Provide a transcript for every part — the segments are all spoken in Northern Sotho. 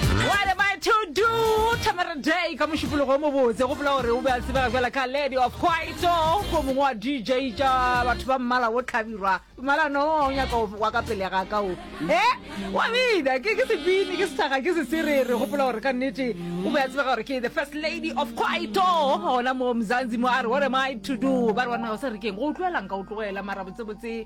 What am I to do? Tamara Day ka mošupologo o mobotse go pela gore o be a tsebega bjala ka lady of quaito ko mongwe wa dj tša batho ba mmala o tlhabirwa mmala no o nyaka o- wa ka pele ga ka o e wa bina ke ke sepini ke sethaga ke seserere go pela gore ka nnete o be a tsebega gore ke the first lady of quaito gona mo mzanzi mo a re what am I to do ba re wa nago sa rekeng go utlwelang ka o tlogela mara botsebotse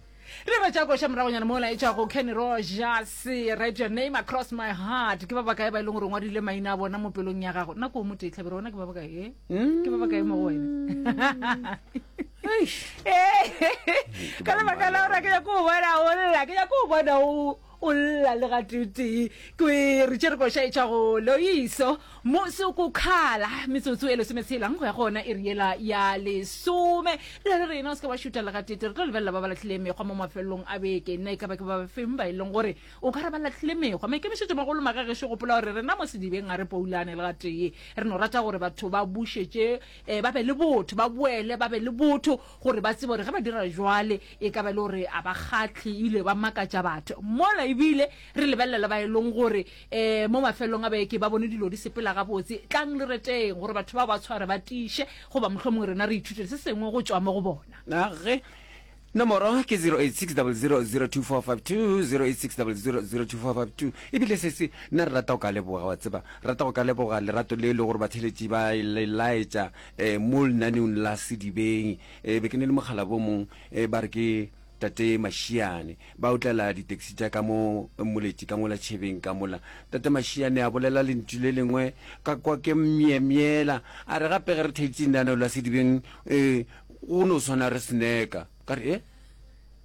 re ba tša koša moragonyana mo laetša go kenny rogers write your name across my heart ke ba ba kae ba e leng gore ngwadile maina a bona mo pelong ya gago nako o motee tlhabere ona ke ba ba kae eh? ke ba ba kae mo go wena Eish. Eh, ka lebaka la gore ke nyako o bona o lla ke nyako o bona o O lla le gatee-tee. Kwere tše re koša etšwa go Loiso. Mosi o kokhala. Metsotso e lesometshelang go ya go ona iri yela ya lesome. Re re rena o se ke wa šuta le gatee-tee. Re tlo lebelela ba ba lahlileng mekgwa mo mafelelong a beke. Na e ka ba ke ba bafeng ba e leng gore o ka re ba lahlile mekgwa? Maikemišetšomagolo maga gešo gopola gore rena mo sedibeng ga re poulane le gatee. Re no rata gore batho ba bušetše, ba be le botho, ba boele ba be le botho. gore ba tsebe gore ge ba dira jwale e ka ba e le gore a ba kgatlhe ebile ba makatša batho mola ebile re lebelela le ba e leng gore um mo mafelelong a beke ba bone dilo di sepela gabotse tlang le reteng gore batho ba ba tshware ba tiše goba mohlho mongwe rena re ithutele se sengwe go tšwa mo go bona age nomoro ke 0860002452 ebile se se nna re rata go ka leboga wa tseba rata go ka leboga lerato le e le gore batheletši ba e le laetša um mo lenaneong la sedibeng um be ke ne le mokgalabo o mong um ba re ke tate mašiane ba otlela ditaxi tša ka mo moletši ka ngola tšhebeng ka mola tate mašiane a bolela lentšu le lengwe ka kwa ke myemyela a re gape ge re theetše lenaneo la sedibeng um go no swana re sneka ka re e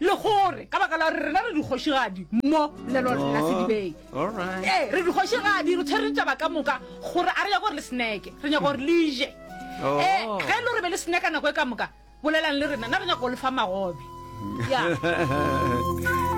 Le gore ka baka la gore rena re dikgošigadi mo lelo la sedibeng, ee, re dikgošigadi, re tshwere ditaba ka moka, gore a re nyako gore le sneke, re nyako gore le je. Ee, ge e le gore be le sneka nako e ka moka, bolelang le rena, na re nyako go le fa magobe. Ya.